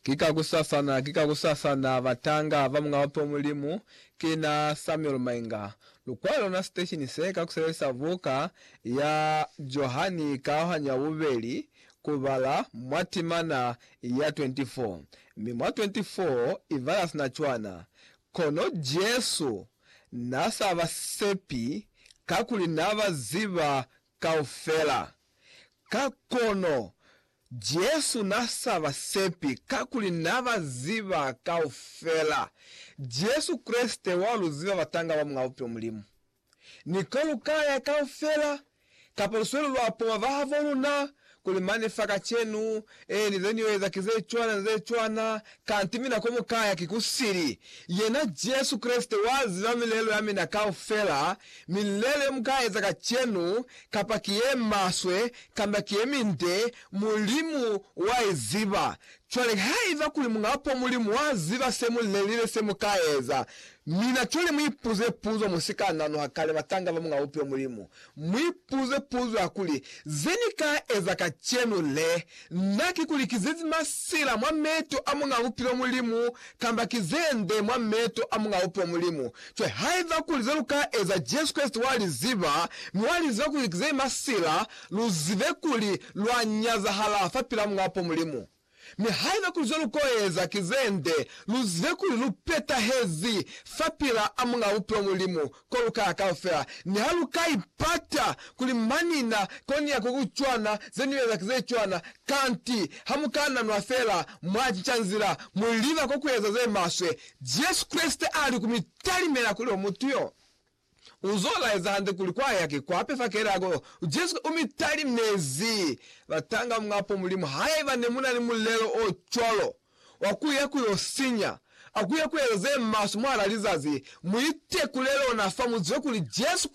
Ki kakusasana, ki kakusasana, batanga ba Muñ'a Bape Mulimu, ki na Samuel Mainga. Lukwalo lona siteshini se ka ku sebelisa buka ya Johani Kaohanyo ya Bubeli ku bala mwa timana ya 24, mi mwa 24 i bala sina cwana. Kono Jesu na sa ba sepi kakuli na ba ziba kaufela. Ka kono, Jesu n'a sa ba sepi kakuli n'a ba ziba kaufela. Jesu Kreste wa lu ziba batanga ba Mulao Bupilo Mulimu. Ni ko lu ka ya kaufela, kapa lusweli lwa poma bahaboluna, Kuli mane fa kacenu, e ni zeniyo eza ki ze cwana ni ze cwana, kanti mina ko mu kaya ki kusili. Yena Jesu Kreste wa ziba milelo ya mina kaufela. Milelo ye mu ka eza kacenu, kapa ki ye maswe kamba ki ye minde, Mulimu wa i ziba. Cwale haiba kuli Muñapo Mulimu wa ziba se mu lelile se mu ka eza, mina cwale mu ipuze puzo mu si ka nanuha kale batanga ba Muña Bupiyo Mulimu Mu ipuze puzo ya kuli, Ze ni ka eza kacenu le, na ki ku likizezi masila mwa meto a Muñ'a Bupilo Mulimu, kamba ki ze nde mwa meto a Muñ'a Bupilo Mulimu? Cwale, haiba kuli ze lu ka eza Jesu Kreste wa li ziba, mi wa li ziba ku likizei masila, lu zibe kuli lwa nyazahala fapil'a Muñ'a Bupilo Mulimu. Mi haiba kuli zelukoeza ki zende, luzibe kuli lupetahezi fapila a Muñaa Bupilo Mulimu kolukaya kaufela. Niha lukaipata kuli mani na konia kukucwana, zenieza ki zecwana, kanti hamukananwa feela mwacinca nzila, muliba kokueza zemaswe. Jesu Kreste ali kumitalimela kuli omutu yo U zo laeza hande kuli kwa yake kwa pe fakela ko Jesu u mi talimezi. Batanga mwapo Mulimu haiba ne mu na ni mulelo o cwalo wa ku ya ku yo sinya a ku ya ku eza ze maswe mwahal'a lizazi. Mu itekule lona fa mu zibe kuli Jesu